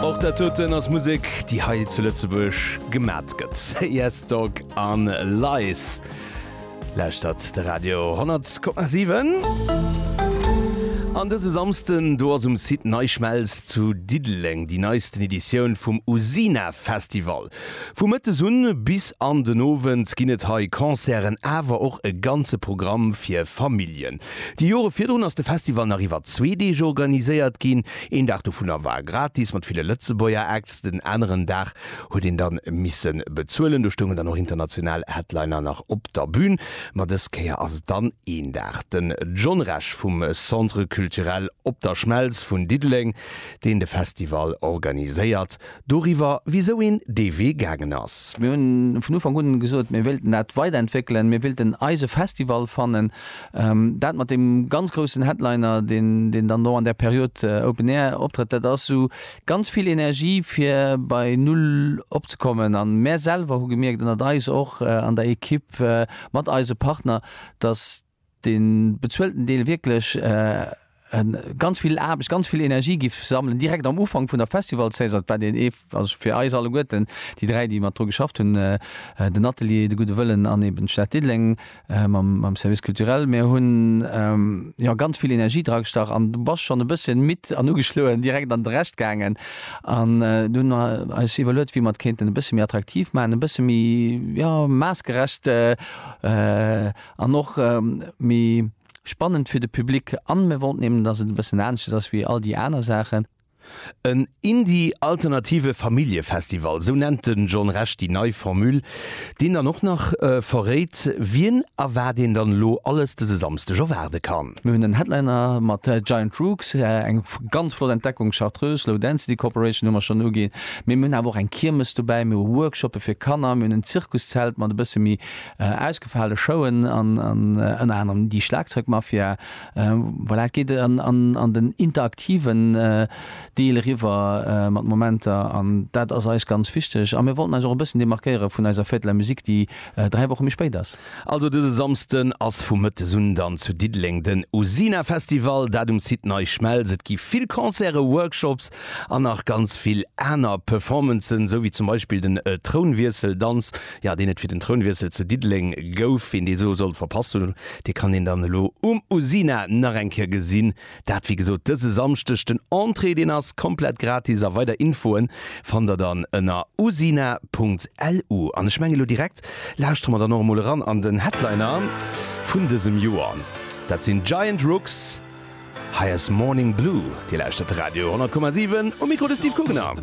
Och dat doten ass Musek, déi hei zu Lëtzebuerg gemat gëtt. Yes Dog an Lies. Lauschtert de Radio 10,7. An dëse Samsden, do ass um Site NeiSchmelz zu Diddeleng déi neisten Editioun vum Usina Festival. Vu mëttes un bis an den Owend ginn et hei Concerten, awer och e ganze Programm fir Familljen. Déi Jore virdrun ass de Festival nach iwwer zwee Deeg organiséiert ginn. Een Dag dovunner war gratis mat ville Lëtzebuerger Acts, den aneren Dag huet een dann missen bezuelen. Do stoungen dann och international Headliner nach op der Bühn, ma dës Kéier ass et dann een Dag den John Resch vum Centre Culturel Op der Schmelz vun Diddeleng, deen de Festival organiséiert. doriwwer, wisou een dee Wee gaangen ass. Mir hunn vun Ufank un gesot, mir wéilten dat weiderentwéckelen, mir wéilten eise Festival fannen. Dat mat deem ganz groussen Headliner, deen dann do an där Period Open Air optrëtt, dat ass esou ganz vill Energie, fir bei Null opzekommen. A mär selwer hu gemierkt, ënnert eis och an der Ekipp mat eise Partner, datt, de bezuelten Deel wierklech ganz vill Aarbecht, ganz vill Energie géif sammelen, direkt am Ufank vun der Festivalsaison. Dat war deen ee, also fir eis alleguerten, déi dräi, déi mat dru geschafft hunn, den Atelier, de Gudde Wëllen an eeben d'Stad Diddeleng mam Service culturel. Mir hunn, jo, ganz vill Energie dragestach an du bass schonn e bësschen midd an ugeschloen direkt an de Rescht gaangen. An du hunn mer eis iwwerluet, wéi mer et kéinten e bësse méi attraktiv maachen, e bësse méi, jo, maassgerecht An och méi spannend fir de Public. An mir wollten eben, dass et e bëssen aneschters ass wéi all déi aner Saachen. En Indie-Alternative Familljefestival, sou nennt de John Resch déi nei Formule, deen dann och nach verréit, wien a wat een dann elo alles dëse Samsdeg erwaarde kann. Mir hunn en Headliner mat Giant Rooks, eng ganz flott Entdeckung, Chartreuse, Low Density Corporation hu mer schonn uginn, mee mir hunn awer och eng Kiermes dobäi, mir hu Workshoppe fir Kanner, mir hunn en Zirkuszelt mat e bësse méi. ausgefale Showen an ënner anerem déi Schlagzeugmafia. Voilà, et geet an den interaktiven Deel eriwwer mat Momenter an dat ass eis ganz wichteg a mir wollten eis och e bëssen demarkéiere vun eiser Fête de la musique, déi dräi Woche méi spéit ass. Also dëse Samsden ass vu mëttes un dann zu Diddeleng den Usina Festival, dat um Site Nei Schmelz. Et gi vill Concerte, Workshops an nach ganz vill aner Performancen, sou wéi zum Beispill den Trounwiesseldanz. Jo, deen et fir den Trounwiessel zu Diddeleng gouf, ween dee sou sollt verpasst hunn, dee kann een dann elo um Usina nach eng Kéier gesinn. Dat wéi gesot dëse Samschdeg. Den Entrée deen ass komplett gratis a weider Infoen fannt der dann ënner usina.lu. An ech mengen elo direkt lauschtere mer dann och emol eran an den Headliner vun dësem Joer. Dat sinn Giant Rooks, hei ass Morning Blue. Dir lauschtert Radio 100,7, um Mikro de Steve Kugener.